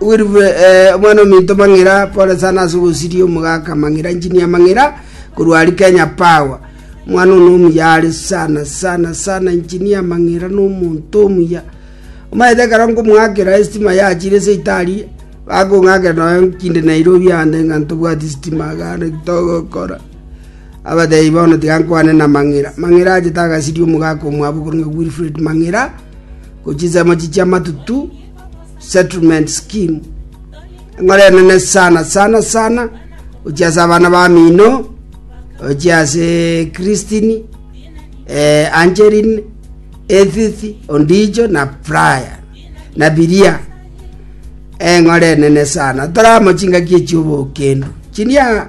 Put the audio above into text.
Wirue, ee, omwana ominto mang'ira, pole sana ase ogosiria omogaka mang'ira, engineer mang'ira, korwa aria Kenya Power. Omwana ono omuya are sana sana sana, engineer mang'ira na omonto omuya. Omanyete ekero nkomong'akera estima yachire ase itari, bakong'akera nonya kinde Nairobi ande ng'a ntobwati stima iga ande ki togokora. Abatebi bono tiga nkwane na mang'ira. Mang'ira achete agasiria omogaka omwabo okorong'ia Wilfred mang'ira, gochia ensemo echi chia amatutu, settlement scheme eng'ora enene sana sana sana gochia ase abana bamino gochia ase christine eh, angeline edith ondijo na brian na biria eng'ora enene sana toramo chingaki echiobokendo chiria